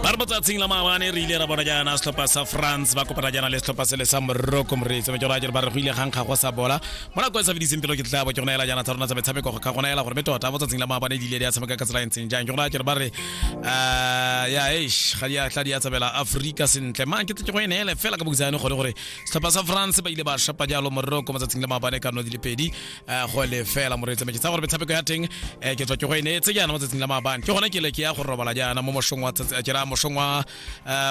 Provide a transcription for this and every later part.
ba re motsatsing la maabane re ile ra bona jaana setlhopha sa france ba kopana jaana le setlhopha sele sa morocco moreetsi me ke raya jere ba re go ile gankga go sa bola mo nako e sa fediseng pelo ke tla bo ke gona ela jaana tsa rona tsa metshameko go ka gona ela gore me tota motsatsing la maabane di ile di a tshameka ka tsela e ntseng jang ke raya jere ba re ah, ya eish ga di a tla di a tsabela afrika sentle mang ke tse go ene ele fela ka bokitsane gore gore setlhopha sa france ba ile ba shapa jalo morocco motsatsing la maabane ka no di le pedi eh, go le fela moreetsi me ke tsaya gore metshameko ya teng eh, ke tswa ke go e neetse jaana mo tsatsing la maabane ke gone ke le ke ya go robala jaana mo moshong wa eh, ke ra moshong wa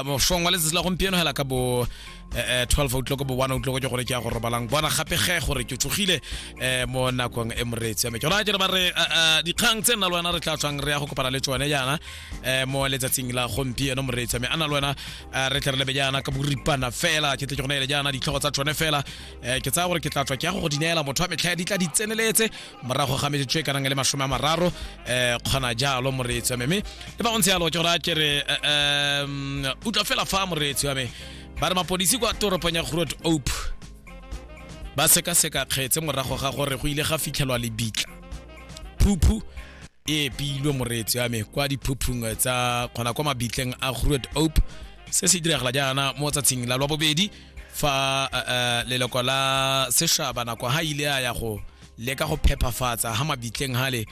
moshong wa letsatsi la gompieno hela ka bo 12 o'clock bo 1 o'clock ke gone ke ya go robalang bona gape ge gore ke tsogile mo nakong e moreetsi ya me ke gona ke re ba re dikgang tse nna le wena re tla tswang re ya go kopana le tsone jaana mo letsatsing la gompieno moreetsi ya me a na le wena re tle re lebe jaana ka boripana fela ke tle ke gone ele jaana ditlhogo tsa tsone fela um ke tsaya gore ke tla tswa ke ya go go di neela motho wa metlha di tla di tseneletse morago ga metsotso e kanang le masome a mararo um kgona jalo moreetsi wa me mme le ba gontse yalo ke gore a ke re um utlwa fela fa moreetsi wa me ba re mapodisi kwa toropong ya grot ope ba sekaseka kgetse morago ga gore go ile ga fitlhelwa lebitla phuphu e epilwe moreetsi wa me kwa diphuphung tsa kgona kwa mabitleng a grot ope se se diragala jaana mo tsatsing la lwa bobedi fa uh, uh, leloko la sešaba nako ha ile a ya go leka go phephafatsa ha mabitleng hale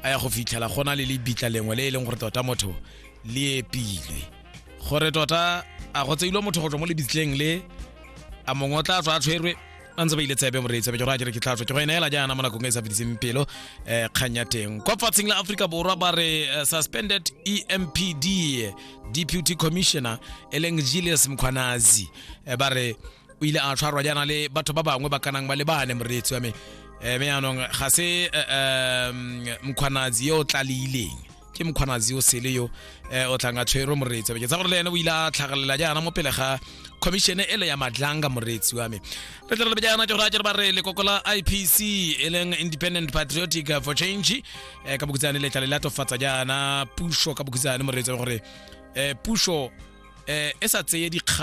a ya go fitlhela gona le lebitla lengwe le e leng gore tota motho le epilwe gore tota a go tseilwe motho go tswa mo lebitleng le a mongwe o tla tswa a tshwerwe a ntse ba ile tsebe moreetsa be ke gore a kere ke tlatswa ke go eneela jaana mo nakong e sa fediseng pelo um kgang ya teng kwa fatsheng la aforika borwa ba re eh, suspended empd deputy commissioner e leng julius mkhwanazi eh, ba re o ile a tshwarwa jaana le batho ba bangwe ba kanang ba lebane moreetsi wa me um me yaanong ga se um mkhwanazi yo o tlaleileng ke mkhwanazi yo sele yo um o tlang a tshwerwe moreetsi wa me ke tsa gore le ene o ile a tlhagalelela jaana mo pele ga commission ele ya madlanga moreetsi wa me re tle re lebe jaana ke gore a ke re ba re lekoko la ipc e leng independent patriotic for change um ka bokutsane letla le latofatsa jaana puso ka bokutsane moreetsa gore um puso um e sa tseye dikgang